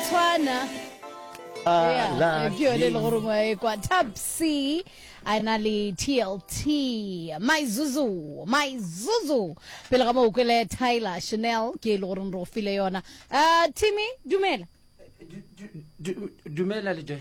tshwana Ala, ke yone e le gore ngwa e kwa tapsi a e na le tlt my zuzu my zuzu pele ga moo kwele tyler chanel ke e le goreng re go file yona um timmy dumela Du- du- du- dumela le joy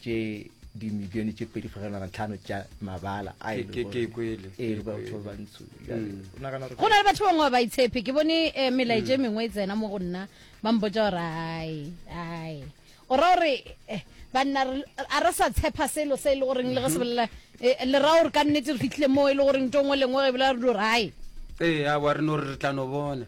tše dimilione tše pedi fegelwana tlhano tša mabala a e lego- Ke- ke- ke kwele, ke Ee, batho kwele. ba bantsho Bjale, o nagana gore- go na le batho bangwe ba ba itshepe ke bone eh, melaetša e mengwe e tsena mo go nna ba mpotsa gore ai ai o ra gore eh, banna re- a re sa tshepa selo se e le goreng le ge se bolela eh, le ra gore ka nnete re fitlhile moo e le goreng to ngwe lengwe ge e bolela re di gore ai ee a wa re no re re tla no bona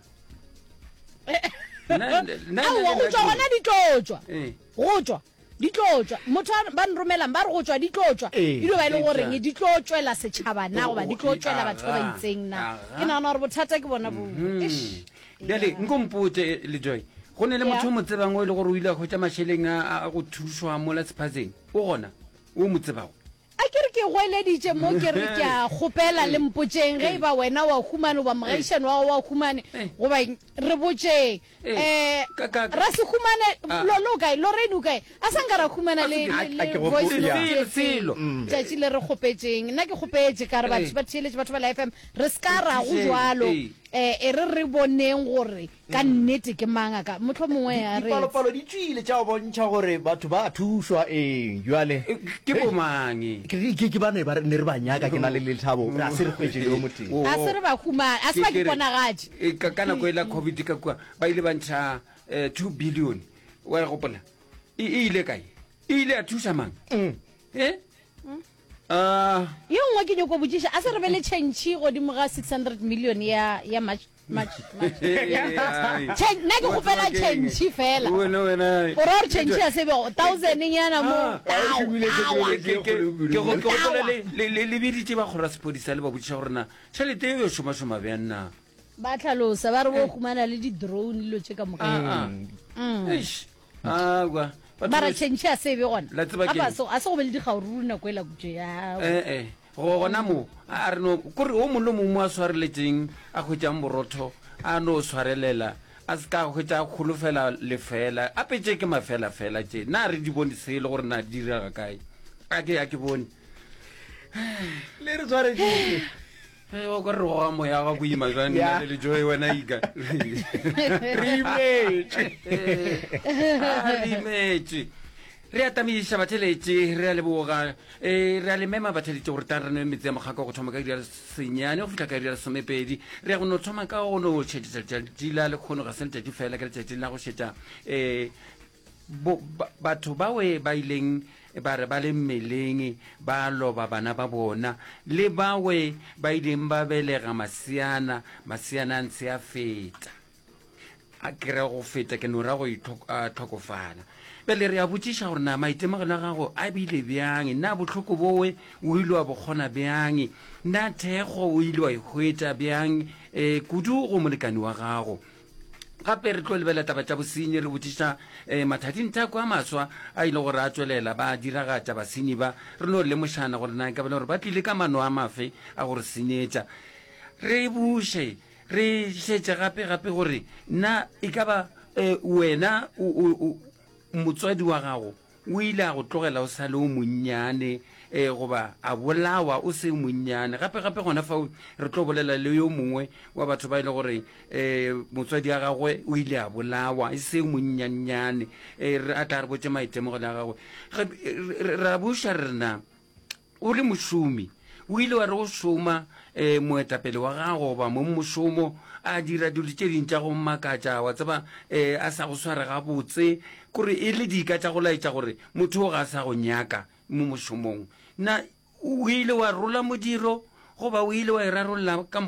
Nna- nna- nna- aowa go tswa gona di tlo tswa Ee. go tswa Di tlo tšwa. Motho a ba nromelang ba re go tšwa di tlo tšwa. E dio ba e le goreng di tlo tšwela setšhaba na goba di tlo tšwela batho ba ba itseng na. Ke nagana gore bothata ke bona boo. Eish. Bjale nko mpotse Lejoy. Go ne le motho o mo tsebang o e le gore o ile a hwetša mašeleng a go thušwa mola sephatseng? O gona? O mo tsebago? A ke re ke goeleditše mo ke re ke a kgopela le mpotšeng ge e ba wena wa humane goba mogaišani wa gago wa humane goba eng, re botšeng. Um Rasehumane, lo lo kae? Lorraine o kae? A sa nka ra humana le le- le Ke go voice founela. note Tselo, tselo. etseng tšatši le re kgopetšeng. Nna ke kgopetše ka re batho ba theeletše batho ba la FM re se ka ra go Kgopetšeng, jwalo. ee. Um e re re boneng gore Ka nnete, ke mang a ka? Mohlomongwe a re. Dipalopalo di tšwile tša bontšha gore batho ba a thušwa. Ee, bjale. Ke bomang? Ke, ke ba ne ba, ne re ba nyaka, ke na le lethabo. Ga se re hwetše le yo motee. Ga se re ba humane. A se ba ke ponagatše. Ka, ka nako e la COVID ka kua, ba ile ba ntšha eh, two billion. Wa e gopola? E, e ile kae? E ile ya thuša mang? Eh? Ah, Yo nngwe ke nyoko botšiša, a se re be le tšhentšhi godimo ga 600 million ya, ya March. nna ke kgopela change fela o ra gore change ya sebe thousand nyana mo lebiditse ba kgora sepodisa le ba bodisa gore na tšhelete e yo šomašoma bjang na ba tlhalosa ba re bo khumana le di-drone dilo tše ka moka awa batho mara ba- change a sebe gona La tseba Ga ba keng? so- a se go be le dikgaoruru nako e la kutše ya ee Eh, go gona mo a a re no kore o mongwe le mongwe mo a swareletseng a hwetšang borotho a no swarelela a se ka hwetša a kgolofela lefela a petse ke mafela fela tše na re di bone se e le gore na di direga kae a ke a ke bone le re tshwareditse Ge o ka re goga moya ga boima jwa nna le lejoe wena iga re imetše re imetše re atamiša batheletše re a leboga um re a le mema batheletše gore tla re nwe metse ya mokgako go thoma ka iri ya senyane go fitlha ka iri ya lesomepedi re ya go no thoma ka go no šetša letšatši la lekgono ga se letšatši fela ke letšatši la go šetša um bo, ba, batho bawe ba ileng ba re ba le mmeleng ba loba bana ba bona le bawe ba ileng ba belega maseana maseana a ntse a feta a kere go feta ke nora go itlhokofala bjale re a botšiša gore na maitemogelo a gago a bile bjang na bohloko bowe o ile wa bokgona bjang na thekgo o ile wa e hwetša bjang um kudu go molekane wa gago gape re tlo lebelela taba tša bosenyi re botšiša um eh, mathading thako a maswa a ile gore a tswelela ba diragatša basenyi ba re no lemošana gore na kabele gore ba tlile ka mano a mafe a gore senyetša re buše re šetše gape gape gore na e ka ba um wena motswadi wa gago O ile a go tlogela o sa le o monnyane, ee, goba a bolawa o se o monnyane. Gape, gape gona fao re tlo bolela le yo mongwe wa batho ba e le gore um motswadi wa gagwe o ile a bolawa e se o monnyannyane, um a tla re botse maitemogelo a gagwe. Ra buša re rena O le mošomi, o ile wa re go šoma um moetapele wa gago goba mong mošomo a dira dilo tše ding tša go mmakatša wa tseba um a sa go sware gabotse kore e le dika tša go laetša gore motho o ga a sa go nyaka mo mošomong na o ile wa rola modiro goba o ile wa e rarolola ka